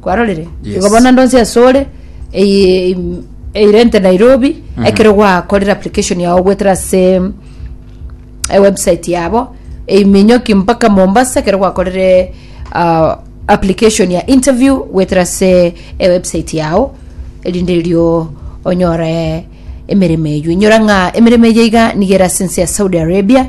kwarorire Yes. igo bono ande onsi ase ore eye- im- eirente nairobi Mhm. ekero gwakorire application yao goetera ase ewebsite yabo eiminyoki mpaka mombasa ekero gwakorire ah, application ya interview goetera ase ewebsite yao erinde erio onyore emeremo eywo inyora ng'a emeremo eye iga nigo ere ase ense ya saudi arabia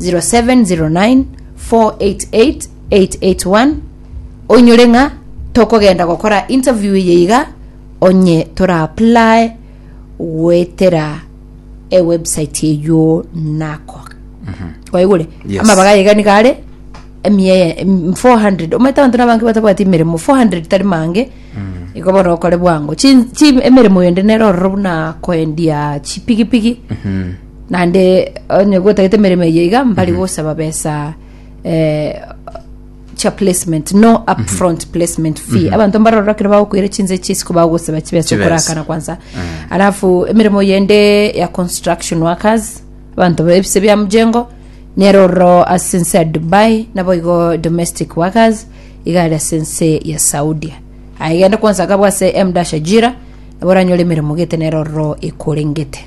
0709 488 881 oinyore ng'a tokogenda gokora interview eye iga onye toraapply goetera ewebsite eywo nako kwaigure Yes. amabaga iga niga are emie em- 400 omanyete abanto nabange batabwati emeremo 400 tari mange igo bono okore bwango Chi- chi- emeremo ende nero ororo buna koendia chipigipigi Naende onye gotagete emeremo eye iga mbari gosaba besa eh, chia placement no upfront placement fee abanto mbarora kero bagokoira chinse chisiko bagosaba chibesa Chibesa. okorakana kwansa alafu emeremo yende ya construction workers abanto bebise bia mjengo nero ororo ase ense ya dubai nabo igo domestic workers iga ari ase ense ya saudia aye gende kwansa kabwa ase mdasha jira nabo oranyore emeremo gete nero ororo ekorengete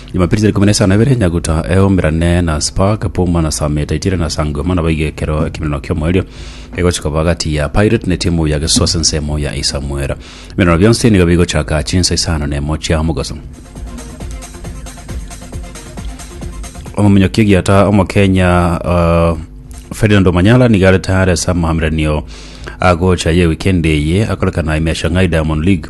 Jumapili tariki ikomi na isano na ibere Nyaguta eomerane na Spark, Puma na Same etaitire na Sangoma nabo iga ekero ekemerano ki'omoerio gegochia koba agati ya Pirate na etimu ya Gesos ensemo ya Isamwera. Emerano bionsi nigo bigochaka chinsa isano na emo chia omogaso. Omominyokia egiata Omokenya uh, Ferdinand Omanyala nigo are tayari ase amaamiranio agocha ye wikendi eye akorekana ime ya Shanghai Diamond League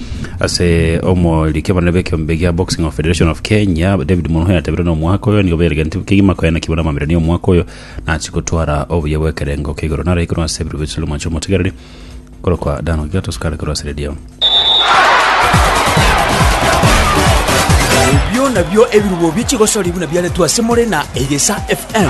Ase omoriki abanene b'ekeombe gia Boxing of Federation of Kenya, David Munuhe yatebirie na omwaka oyo nigo beregentwe kegima koenekigwa na amamirani omwaka oyo na achie gotwara obuya bw'ekerengo kia igoro nare korwa ase ebirobi bisesero mwancha omotegereri korokwa Dan Ogiatos kare korwa ase redio. Ebio nabio ebirubo bie chigosori buna biaretwe ase more na Egesa FM.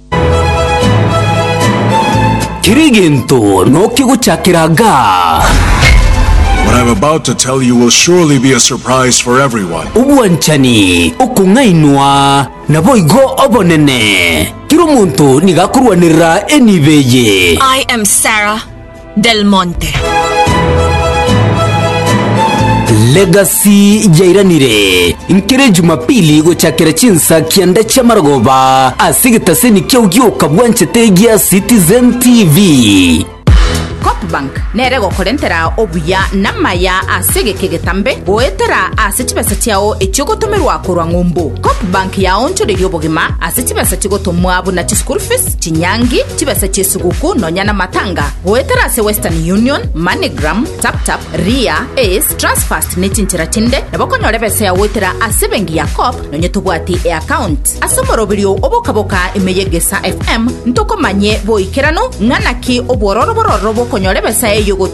Kera egento nokia gochakera gaa. What I'm about to tell you will surely be a surprise for everyone. Obwanchani, okong'ainwa, naboigo obonene. Kera omonto nigo akorwanerera enibo eye. I am Sarah. Del Monte. Legacy yairanire nkere Jumapili gochakera chinsa kianda chia marogoba ase egetaseni kiao gioka bwanchete gia Citizen TV. Copbank nere gokorentera obuya namaya ase egeka egetambe goetera ase chibesa chiao echiogotomerwa korwa ng'umbu. Copbank yaonchoreria obogima ase chibesa chigotomwa buna chischool fees, chinyangi, chibesa chi'esuguku nonya namatanga goetera ase Western Union, Moneygram, TapTap, Ria, Ace, Transfast ne chinchera chinde nabo okonyora ebesa yao goetera ase ebenki ya Co-op nonya tobwati e'account. Ase omoroberio o Bokaboka ime y'Egesaa FM ntokomanye boikeranu ng'a naki obwororo bororo bokonyora ebesa eyio gotomwa